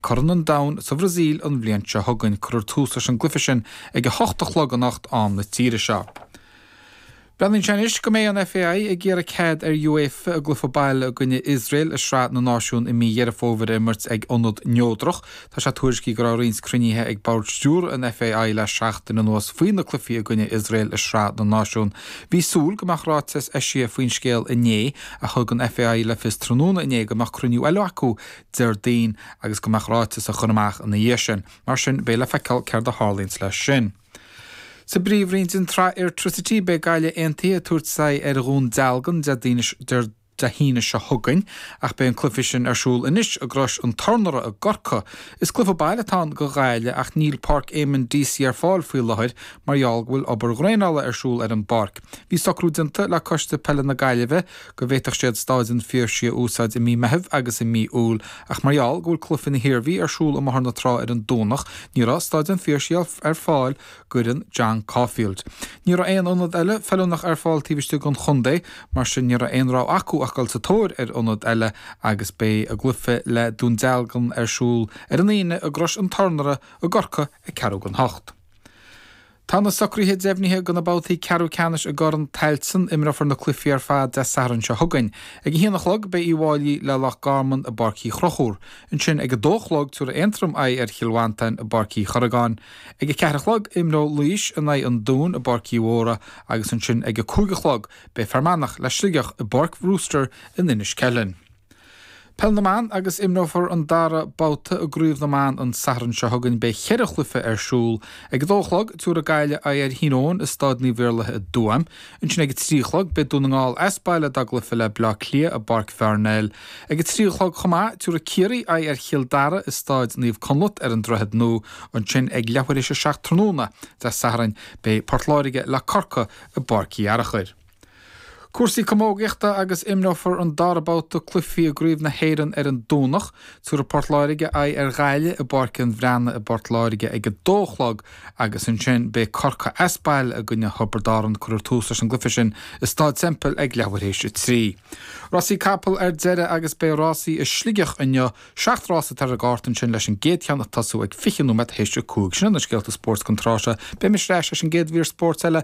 Corn an Domhain sa Bhrasaíl an bhliain seo chugainn, cuirfear tús leis an gcluiche sin ag a hocht a chlog anocht am na tíre seo. Breathnaíonn sé anois go mbeidh an FAI ag iarraidh cead ar UEFA a gcluiche baile i gcoinne Iosrael i Sraith na Náisiún i mí Dheireadh Fómhair a imirt ag ionad neodrach. Tá sé tuairiscithe go raibh roinnt cruinnithe ag Bord Stiúrtha an FAI le seachtain anuas faoi na cluichí i gcoinne Iosrael i Sraith na Náisiún. Bhí súil go mbeadh ráiteas eisithe faoin scéal inné ach thug an FAI le fios tráthnóna inné go mbeadh cruinniú eile acu Déardaoin agus go mbeadh ráiteas á chur amach ina dhiaidh sin. Mar sin, beidh le feiceáil céard a tharlaíonns leis sin. Sa bpríomhroinn den tsraith Airtricity, beidh Gaillimh Aontaithe ag tabhairt aghaidh ar Dhún Dealgan Dé hAoine seo chugainn ach beidh an cluiche sin ar siúl anois i gCrois an Tornóra i gCorcaigh. Is cluiche baile atá ann do Ghaillimh ach níl Páirc Eamonn Deacy ar fáil faoi láthair mar gheall go bhfuil obair dhraenála ar siúl ar an bpáirc. Bhí socrú déanta le Coiste Peile na Gaillimhe go bhféadfadh siad Stáid an Phiarsaigh a úsáid i mí Meithimh agus i mí Iúil, ach mar gheall go bhfuil Cluife na hIarmhí ar siúl i mBóthar na Trá ar an Domhnach, ní raibh Stáid an Phiarsaigh ar fáil d'fhoireann John Caulfield. Ní raibh aon ionad eile feiliúnach ar fáil taobh istigh den chontae, mar sin ní raibh aon rogha acu ach dul sa tóir ar ionad eile agus beidh a gcluife le Dún Dealgan ar siúl ar an Aoine i gCrois an Tornóra i gCorcaigh ag ceathrú don hocht Tá na socruithe deimhnithe go na babhtaí ceathrú ceannais i gCorn Tailteann, imreofar na cluichí ar fad Dé Sathairn seo chugainn. Ag a haon a chlog beidh Uíbh Fháilí le Loch Garman i bPáirc Uí Chonchúir. Ansin ag a dó a chlog tabharfaidh Aontroim aghaidh ar Chill Mhantáin i bPáirc Uí Chorragáin. Ag a ceathair a chlog imreoidh Laois in aghaidh an Dúin i bPáirc Uí Mhórdha agus ansin ag a cúig a chlog beidh Fear Manach le Sligeach i bPáirc Brewster in Inis Ceithleann. Peil na mBan Agus imreofar an dara babhta i gCraobh na mBan an Satharn seo chugainn beidh cheithre chluiche ar siúl. Ag a dó a chlog, tabharfaidh Gaillimh aghaidh ar Thír Eoghain i Stáid Naomh Iarlaithe i dTuaim. Ansin ag a trí a chlog, beidh Dún na nGall as baile dá gcluiche le Bleá Cliath i bPáirc Pharnell. Ag a trí a chlog chomh maith, tabharfaidh Ciarraí aghaidh ar Chill Dara i Stáid Naomh Conleth ar an Droichead Nua. Ansin ag leathuair théis a seacht tráthnóna, Dé Sathairn, beidh Port Láirge le Corcaigh i bPáirc Uí Fhearachair. Cúrsaí camógaíochta agus imreofar an dara babhta cluichí i gCraobh na hÉireann ar an Domhnach. Tabharfaidh Port Láirge aghaidh ar Ghaillimh i bPáirc an Bhreathnaigh i bPort Láirge ag a dó a chlog agus ansin beidh Corcaigh as baile i gcoinne Thiobraid Árann. Cuirfear tús leis an gcluiche sin i Stáid Semple ag leathuair théis a trí. Rásaí capall ar deireadh agus beidh rásaí i Sligeach inniu. Seacht rás atá ar an gcárta ansin leis an gcéad cheann ag tosú ag fiche nóiméad théis a cúig. Sin iad na scéalta spóirt don tráth seo. Beidh mise ar ais leis an gcéad mhír spóirt eile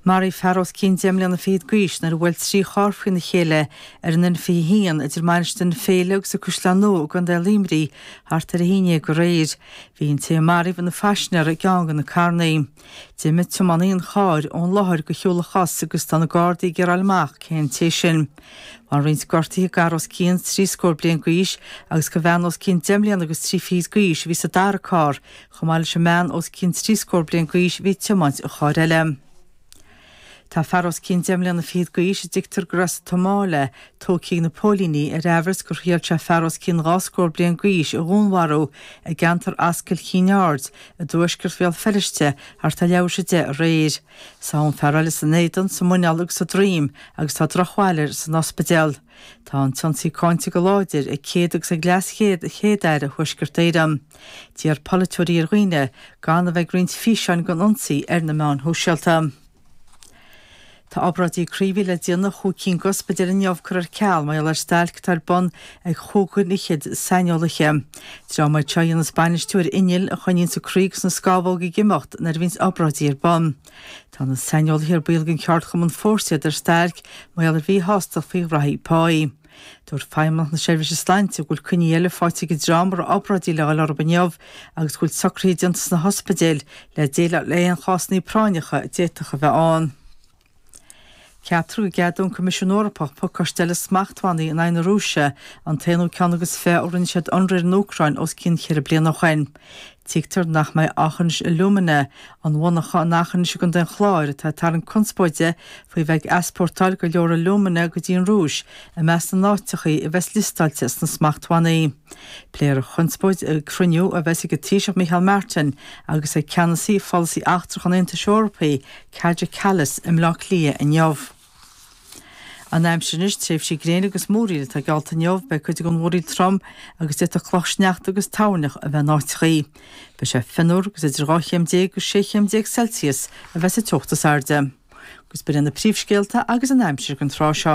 Maraíodh fear os cionn deich mbliana fichead d'aois nuair a bhuail trí charr faoina chéile ar an N21 idir Mainistir na Féile agus An Caisleán Nua i gContae Luimní thart ar a haon dhéag aréir. Bhí an té a maraíodh ina phaisinéir i gceann de na carrannaí. D'imigh tiománaí an chairr ón láthair de shiúl a chos agus tá na Gardaí ag iarraidh fáil amach cé an té sin. Bhain roinnt gortuithe d'fhear os cionn trí scór bliain d'aois agus do bhean os cionn deich mbliana agus trí fichid d'aois a bhí sa dara carr. Chomh maith leis an mbean os cionn trí scór bliain d'aois a bhí ag tiomáint an chairr eile. Tá fear os cionn deich mbliana fichead d'aois a dtuigtear gurb as an tSomáil é tógtha ag na póilíní ar aimhreas gur thriail sé fear os cionn dhá scór bliain d'aois a dhúnmharú i gceantar Ascaill Kinnaird i dtuaisceart Bhéal Feirste thart ar leathuair tar éis a 10 aréir. Sádh an fear eile san éadan, sa muineál agus sa droim agus tá drochbhail air san ospidéal. Tá an t-ionsaí cáinte go láidir ag Céad agus ag Leas-Chéad-Aire Thuaisceart Éireann. D'iarr polaiteoirí ar dhaoine gan a bheith ag roinnt físeáin den ionsaí ar na meáin shóisialta. Tá obráidí croí a bhí le déanamh i chúig cinn d'ospidéil inniu curtha ar ceal mar gheall ar stailc atá ar bun ag chúig dhuine fhichead saineolaithe. Dream iad seo a dhéanas bainistiú ar innill a choinníonns an croí agus na scámhóga ag imeacht nuair a bhíonns obráidí ar bun. Tá na saineolaithe ar baill den cheardchumann Fórsa iad ar stailc mar gheall ar mhíshástacht faoi ghraithí páí. Dúirt Feidhmeannacht na Seirbhíse Sláinte go bhfuil coinní eile fáighte ag an dream a raibh obráidí le dhul orthu inniu agus go bhfuil socruithe déanta sna hospidéil le déileáil le haon chásannaí práinneacha a d'fhéadfadh a bheith ann. Ceaptar go gceadóidh an Coimisiún Eorpach pacáiste eile smachtbhannaí in aghaidh na Rúise, an t-aonú ceann agus fiche ó rinne siad ionradh ar an Úcráin os cionn cheithre bliana ó shin. Tuigtear nach mbeidh Aughinish Alumina, an mhonarcha in Eachinis i gContae an Chláir atá ag tarraingt conspóide faoi bheith ag easpórtáil go leor alúmana go dtí an Rúis, i measc na n-áiteachaí a bheas liostáilte sna smachtbhannaí. Pléifear an chonspóid ag cruinniú a bheas ag an Taoiseach Micheál Martin agus ag ceannasaí pholasaí eachtrach an Aontais Eorpaigh, Kaja Kallas, i mBleá Cliath inniu. An aimsir anois, tréimhsí gréine agus múraíl atá geallta inniu, beidh cuid den mhúraíl trom agus d'fhéadfadh clocha sneachta agus toirneach a bheith in áiteachaí. Beidh sé fionnuar agus idir 12 chéim agus 16 chéim Celsius a bheas an teocht is airde. Agus b'in iad na príomhscéalta agus an aimsir don tráth seo.